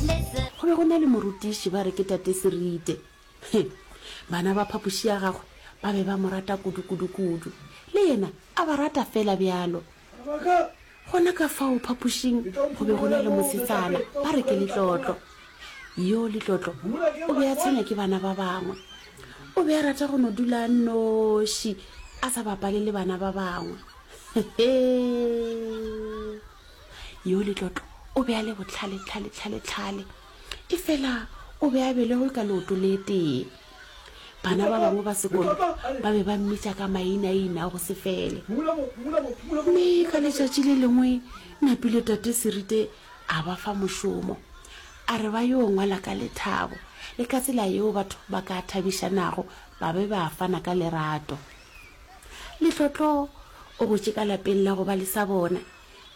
Go be go na le morutiši ba re ke Tate Serite. He, bana ba phapoši ya gagwe ba be ba mo rata kudu-kudu-kudu. Le yena a ba rata feela bjalo. Gona ka fao phapošing go be go na le mosetsana ba re ke Letlotlo. Yo Letlotlo o be a tshwenya ke bana ba bangwe. O be a rata go no dula a nnoši a sa bapale le bana ba bangwe. He-he! Yo Letlotlo o be a le botlhale-tlhale-tlhale-tlhale, efela o be a belegwe ka leoto le tee. Bana ba bangwe ba sekolo ba be ba mmitša ka mainaina a go se fele. Mme ka letšatši le lengwe Napile Tate Serite a ba fa mošomo, a re ba yo ngwala ka lethabo le ka tsela yeo batho ba ka thabišanago ba be ba fana ka lerato. Letlotlo o gotše ka lapeng la go ba le sa bona,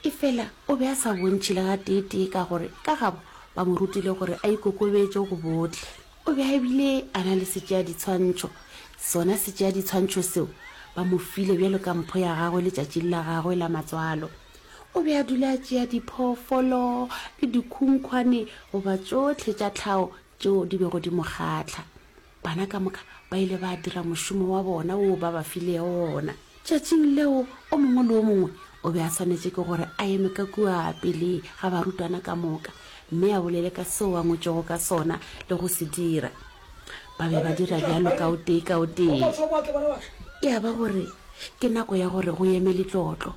efela o be a sa bontšhe le gateetee ka gore ka gabo ba mo rutile gore a ikokobetše go bohle. O be a bile a na le setšeaditshwantšho, sona setšeaditshwantšho seo ba mo file bjalo ka mpho ya gagwe letšatšing la gagwe la matswalo. O be a dula a tšea diphoofolo le dikhunkhwane goba tšohle tša tlhago tšeo di bego di mo kgahla. Bana ka moka ba ile ba dira mošomo wa bona woo ba ba filego wona. Tšatšing leo o mongwe le o mongwe o be a swanetše ke gore a eme ka kua pele ga barutwana ka moka mme a bolele ka seo a ngwetšego ka sona le go se dira. Ba be ba dira bjalo ka o tee ka o tee. E a ba gore ke nako ya gore go eme litlotlo.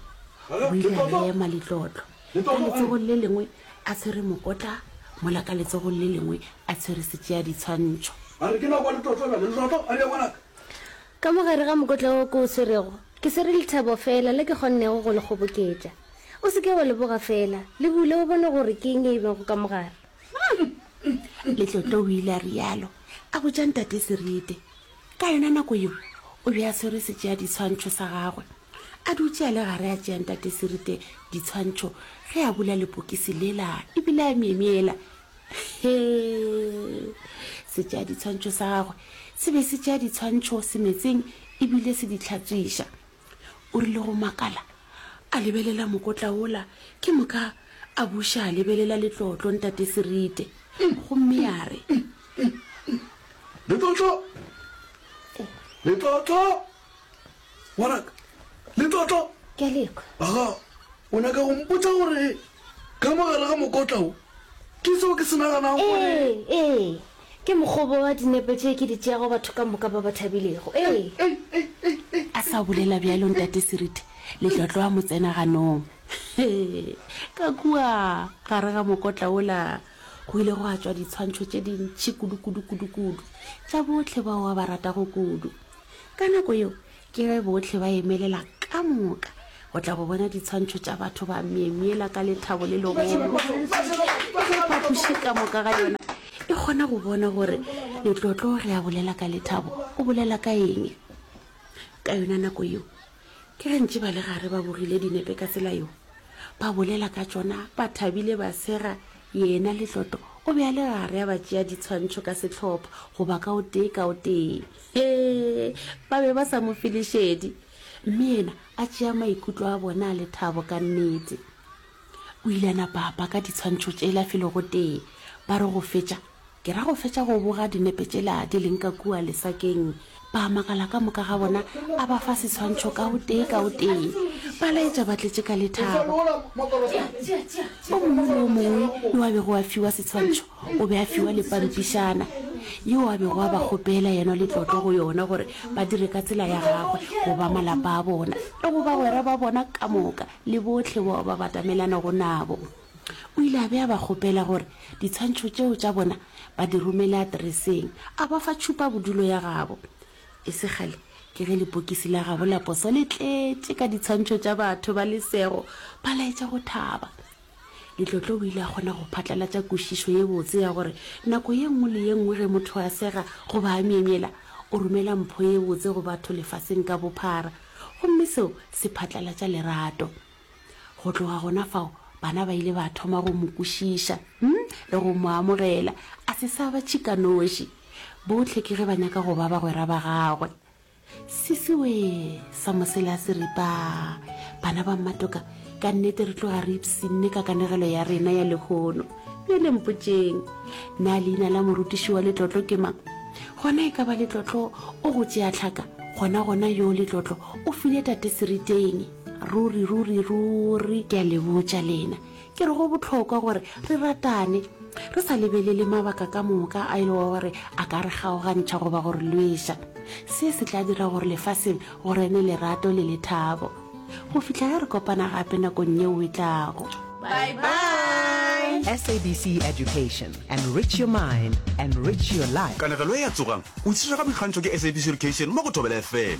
Go ile ga ema litlotlo. ka letsogong le lengwe a tshwere mokotla mola ka letsogong le lengwe a tshwere setšea ditshwantšho ka mogare ga mokotla wo ko o swerego ke swere lethabo fela le ke kgonnego go le kgoboketša o se ke wa le boga fela le bule o bone gore ke eng e bego ka mogare letlotlo o ile a rialo a botša ntate serite Ka yona nako yeo o be a swere setšeadiswantšho sa gagwe, a dutše a le gare a tšea Ntate Sirite ditshwantšho ge a bula lepokisi lela e bile a myemyela. Hee! Setšeadiswantšho sa gagwe se be se tšea ditshwantšho semetseng e bile se di hlatswiša. O rile go makala a lebelela mokotla wola, ke moka a buša a lebelela letlotlo Ntate Sirite gomme a re, Letlotlo! Letlotlo! Ngwanaka, Letlotlo! Ke a lekwa. Aga, o nyaka go mpotsa gore ka mogare ga mokotla o ke seo ke se naganago gore... Ee, ee, ke mokgobo wa dinepe tše ke di tšeago batho ka moka ba ba thabilego. Ee. Ei, ei, ei, ei. A sa bolela bjalo Ntate Seriti, Letlotlo a mo tsena ganong. Ka kua gare ga mokotla ola. Go ile go atšwa ditshwantšho tše dintši kudu-kudu-kudu-kudu tša bohle bao a ba ratago kudu. Ka nako yeo ke ge bohle ba emelela ka moka go tla go bona ditshwantšho tša batho ba myemyela ka lethabo le legolo. Ge phapoši ka moka ga yona e kgona go bona gore letlotlo ge a bolela ka lethabo o bolela ka eng, ka yona nako yeo Ke gantši ba le gare ba bogile dinepe ka tsela yo, ba bolela ka tšona ba thabile ba sega, yena Letloto o be a le gare a ba tšea ditshwantšho ka sehlopha goba ka o tee ka o tee. Hee, ba be ba sa mo fe lešedi, mme yena a tšea maikutlo a bona a lethabo ka nnete. O ile a napa a paka ditshwantšho tšela felo gotee. Ba re go fetša, ke ra go fetša go boga dinepe tšela di leng ka kua lesakeng, ba a makala ka moka ga bona, a ba fa setshwantšho ka o tee ka o tee. Ba laetša ba tletše ka lethabo. O mongwe le o mongwe yo a bego a fiwa setshwantšho o be a fiwa le pampišana yeo a bego a ba kgopela yena le tlotlo go yona gore ba dire ka tsela ya gagwe go ba malapa a bona le go bagwera ba bona ka moka. le bohle bao ba batamelanago nabo. O ile a be a ba kgopela gore ditshwantšho tšeo tša bona ba di romele atereseng, a ba fa tšhupabodulo ya gabo. E se kgale ke ge lepokisi la gabo la poso le tletše ka ditshwantšho tša batho ba lesego, ba laetša go thaba. Letlotlo o ile a kgona go phatlalatša kwešišo ye botse ya gore nako ye nngwe le ye nngwe ge motho a sega goba a myemyela, o romela mpho ye botse go batho lefaseng ka bophara, gomme seo se phatlalatša lerato. Go tloga gona fao, bana ba ile ba thoma go mo kwešiša um le go mo amogela, a se sa ba tšhikanoši. Bohle ke ge ba nyaka go ba bagwera ba gagwe. Sisiwe sa mosela se ripa bana ba mmatoka ka nnete re tloga re ipsinne ka kanegelo ya rena ya lehono bja lempotšeng na leina la morutiši wa letlotlo ke mang gona e ka ba letlotlo o go tšea tlhaka gona gona yo letlotlo o file tate seriteng ruri ruri ruri ke a le botša lena Ke re go bohlokwa gore re ratane, re sa lebelele mabaka ka moka a e lego gore a ka re kgaogantšha goba go re lweša. Se se tla dira gore lefaseng go rene lerato le lethabo go fihla ge re kopana gape nakong yeo e tlago. Bye-bye! SABC Education, Enrich your mind, enrich your life. Kanegelo e a tsogang! O itshirega boikgantšho ke SABC Education mo go Thobela FM.